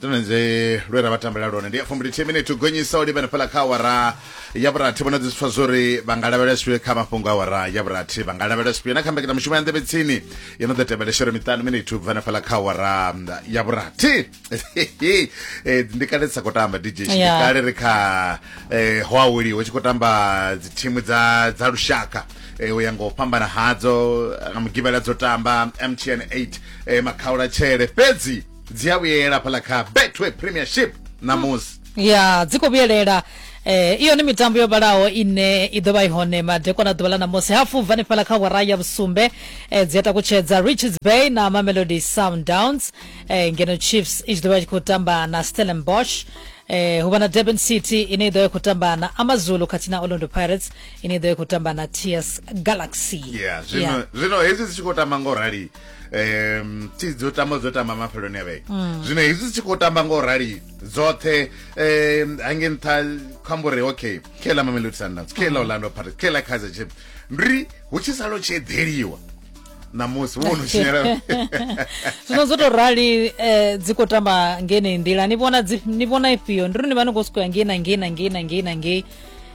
tonenze lwe ra vha tambela lone ndi ya fumbilithihi minete gonyisa u livhana fhala kha awara ya vhurathi vhona dziswa zwori vha nga lavhelela zwifhio kha mafhungo a awara ya vhurathi vha nga lavhelela zwifhio na kha mbekanya mushumo ya nḓevhe tsini yo no ḓo tevhela shere miṱanu minete u bva na fhala kha awara ya vhurathi Eh, ndi kale sa khou tamba dj ndi Yeah. kale ri kha eh, ho aweliwa hu tshi khou tamba dzithimu dza dza lushaka eh, u ya nga u fhambana hadzo nga mugivhela dzo tamba mtn 8 eh, makhaula tshele fhedzi dzi a vhuyela fhaḽa kha betway premiership ṋamusi ya dzi khou vhuyelela eh iyo ni mitambo yo vhalaho ine i ḓo vha i hone madekwana ḓuvha ḽa ṋamusi hafu bva nifhala kha wara ya vhusumbe eh, dzi a takutshedza richards bay na mamelodi sundowns eh, ngeno chiefs i tshi ḓo vha i tshi khou tamba na stellenbosch eh, hu vha na durban city ine i ḓo vha i khou tamba na amazulu khathihi na orlando pirates ine i ḓo vha i khou tamba na ts galaxy ya zwino zwino hedzi dzi tshi khou tamba ngo rali um thi dzo tamba dzo tamba mafheloni a vhege mm. zwino hezwi dzi tshi khou tamba nga u rali dzoṱhe um hange nṱha khamba uri okay khe ḽa mamelodi sundowns khe ḽa orlando pirates khe ḽa kaizer chiefs ndi hu tshi salo tshi eḓeliwa namusi wo no tshinyela zwino zwo tou rali um dzi khou tamba ngenei nḓila ni vhona dzi- ni vhona ifhio ndi ri ni vha ni khou sokou ya ngei na ngei na ngei na ngei na ngei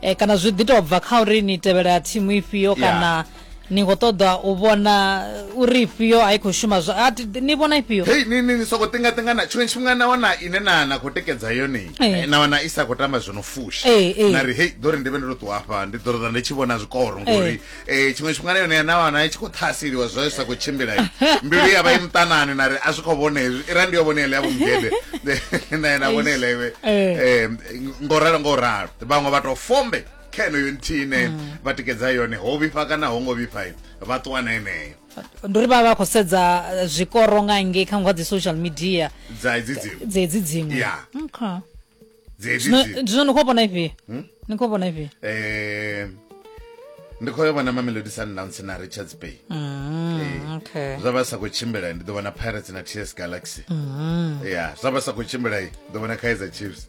um kana zwi ḓi tou bva kha uri ni tevhela thimu ifhio Yeah. kana ni khou ṱoḓa u vhona uri ifhio a i khou shuma zwa a thi- ni vhona ifhio hei ni ni ni soko tingatingana tshiṅwe tshifhinga na wana ine na na khou tikedza yone Eh. eh, na wana i sa khou tamba zwo no fusha Eh, eh. na ri hei ḓo ri ndi vhe ndo to ṱuwa hafha ndi ḓo ṱoḓa ndi tshi vhona zwikoro ngori eh, tshiṅwe tshifhinga na yone na wana i tshi khou ṱhaseliwa zwa zwi sa khou tshimbila i. mbilu ya vha i muṱanani na ri a zwi khou vhona hezwi i ra ndi yo vhona ele ya vhomugede na na vhona ele iwe Eh. Eh, ngo ralo ngo ralo vhaṅwe vha to fombe kha yeneyo nthihi ine mm. vha tikedza yone ho vhifha kana ho ngo vhifha vha ṱuwa na yeneyo ndi uri vha vha khou sedza eh, zwikoro nga ngei kha ngwa dzi social media dza edzi dziṅwe dza edzi dziṅwe ya okay zwino ni khou vhona ifhio hmm? ni khou vhona ifhio eh ndi khou vhona mamelodi sundowns na richards bay mm, eh, okay. zwa vha sa khou tshimbila ndi ḓo vhona pirates na ts galaxy mm. ya zwa vha sa khou tshimbila ḓo vhona kaizer chiefs